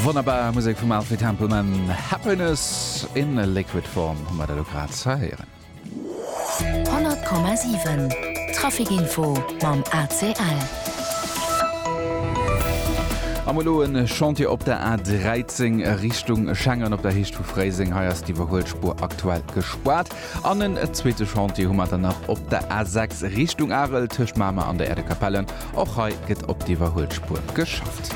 Wonnerbar Musek vum Alfred Templeman, Happiness in a liquid form hu mer der elo grad ze héieren. 100,7 Traficinfo mam ACL. Am elo en Chantier op der A 13 Richtung Schengen op der Heescht vu Fréiseng. Hei ass déi iwwerhuelt Spuer aktuell gespaart. An en zweete Chantier hu mer dann nach op der A 6 Richtung Arel, tëscht Mamer an der Erdekapelle. Och hei gëtt op d'Iwwerhuelspur geschafft.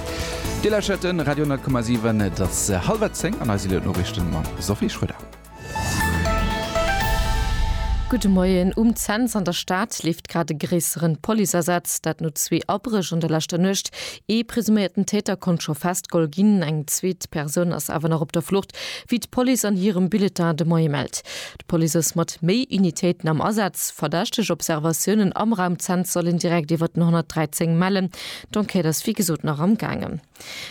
Dir lauschert de Radio 10,7. Et ass hallwer zéng an eise Noriichten mam Sophie Schröder. Gudde Moien. Um Cents an der Stad leeft grad e gréisseren Policeasaz, dat no zwee Abréch an der leschter Nuecht. Ee presuméierten Täter konnt scho festgeholl ginn, eng zweet Persoun ass awer nach op der Flucht. wéi d'Police an hirem Bulletin de Moie mellt. D'Police ass mat méi Unitéiten am Asaz. Verdächteg Observatiounen am Raum Cents sollen direkt iwwer den 113 mellen. D'Enquête ass wéi gesot nach am gaangen.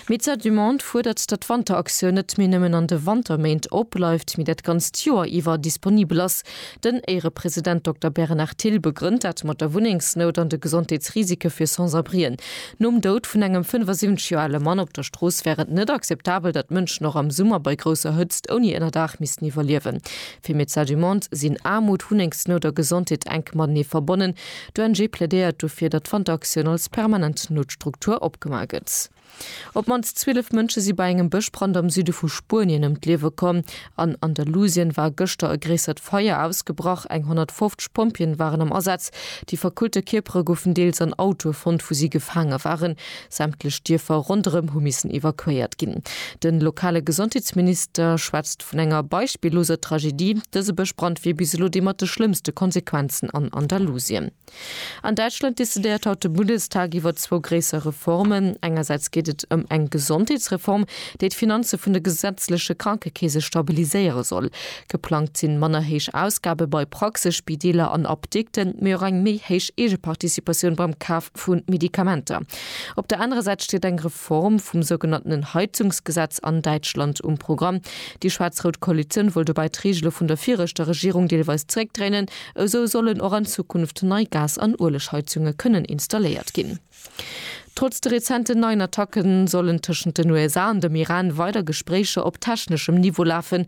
Médecins du Monde fuerdert, datt d'Wanteraktioun net méi nëmmen an de Wanterméint opbleift, mee dat ganzt Joer iwwer disponibel ass. Den Éierepresident Dokter Bernard Thill begrënnt dat mat der Wunnengsnout an de Gesondheetsrisike fir Sans-abrien. Nom Doud vun engem 75 Joer ale Mann op der Strooss wär et net akzeptabel, datt Mënschen och am Summer bei grousser Hëtzt ouni Ënnerdaach missten iwwerliewen. Fir Médecins du Monde sinn Aarmut, Wunnengsnout a Gesondheet enk matenee verbonnen. D'ONG plädéiert dofir, datt d'Wanteraktioun als permanent Noutstruktur opgema gëtt. Op d'mannst 12 Mënsche si bei engem Bëschbrand am Süde vu Spuenien ëm d'Liewe komm. An Andalusien war gëschter e gréissert Feier ausgebrach. Eng 150 Pompjeeën waren am Asaz. Déi verkullte Kierpere goufen deels an Autoe fonnt, wou si gefaange waren. Sämtlech Dierfer ronderëm hu missen evakuéiert ginn. De lokale Gesondheetsminister schwätzt vun enger beispilloser Tragedie. Dëse Bëschbrand wier bis elo dee mat de schlëmmste Konsequenzen an Andalusien. An Däitschland decidéiert haut de Bundestag iwwer zwou gréisser Reformen. Engersäits geet et ëm eng Gesondheetsreform, déi d'Finanze vun de gesetzleche Krankekeese stabiliséiere soll. Geplangt sinn manner héich Ausgabe bei Praxe, Spideeler an Apdikten, mee och eng méi héich Eegeparticipatioun beim Kaf vu Medikamenter. Op der anerer Säit steet eng. Form vum sougenanntenen Heizungsgesetz an Däitschland um Programm. Déi schwaarz-rout Koalitioun wollt dobäi d'Reegele vun der viregter Regierung deelweis zeréckdréinen. Esou sollen och an Zukunft nei Gas an Uelegheizunge kënnen installéiert ginn. Trotz de rezenten neien Attacke sollen tëschent den USA an dem Iran weider Gespréicher op techneschem Niveau lafen.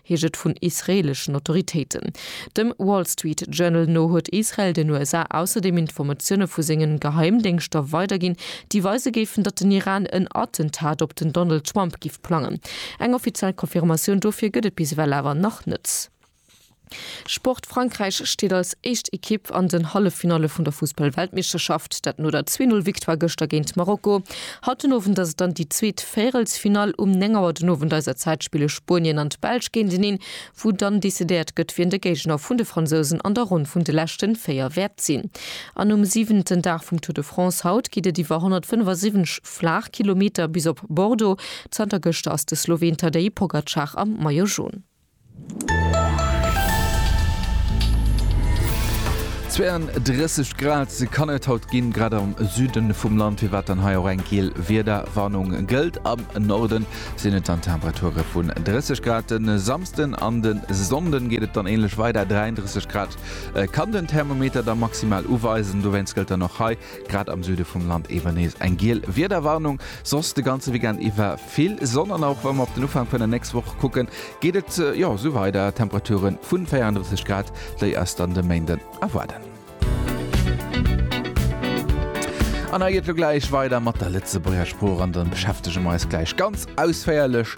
heescht et vun israeeleschen Autoritéiten. Dem Wall Street Journal no huet Israel den USA ausserdeem Informatioune vu sengen Geheimdéngschter weiderginn, déi weise géifen, datt den Iran en Attentat op den Donald Trump giff plangen. Eng offiziell Confirmatioun dofir gëtt et bis ewell awer nach net. Sport, Frankräich steet als éischt Ekipp an den Halleffinalle vun der Fussball-Weltmeeschterschaft, dat no der Zwee-Null-Victoire gëschter géint Marokko. Haut den Owend ass et dann déi zweet Véirelsfinall um 9 Auer den Owend eiser Zäit. Spille Spuenien an d'Belsch géinteneen, wou dann decidéiert gëtt, wien de Géigner vun de Fransousen an der Ronn vun de leschte véier wäert sinn. An um siwenten Dag vum Tour de France haut geet et iwwer 175 Flaachkilometer bis op Bordeaux. Zanter gëschter ass de Sloween Tadej Pogacar am Maillot Jaune. 32 Grad kann et haut ginn, grad am Süden vum Land, firwat dann hei och eng giel Wiederwarnung gëllt. Am Norden sinn et dann Temperature vun 30 Grad. Den Samsden an den Sonnden geet et dann änlech weider, 33 Grad kann den Thermometer da maximal uweisen. Dowéinst gëllt dann och hei Grad am Süde vum Land ewer nees eng giel Wiederwarnung, soss de ganze Weekend iwwer vill Sonn an och wa mer op den Ufank vun der nächst Woch kucken, geet et jo sou weider, Temperature vu 34 Grad, déi eis dann de Méinden erwaarden. An hei geet et elo gläich weider mat der Lëtzebuerger Sprooch an da beschäftege mer eis gläich ganz ausféierlech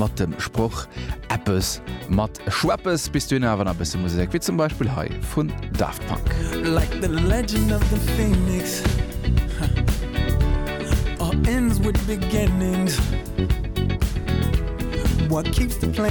mat dem Sproch Eppes mat. Schweppes bis dunn awer nach e bësse Musek, wéi zum Beispill hei vun Daft Punk. Like the legend of the phoenix All ends with beginnings What keeps the plan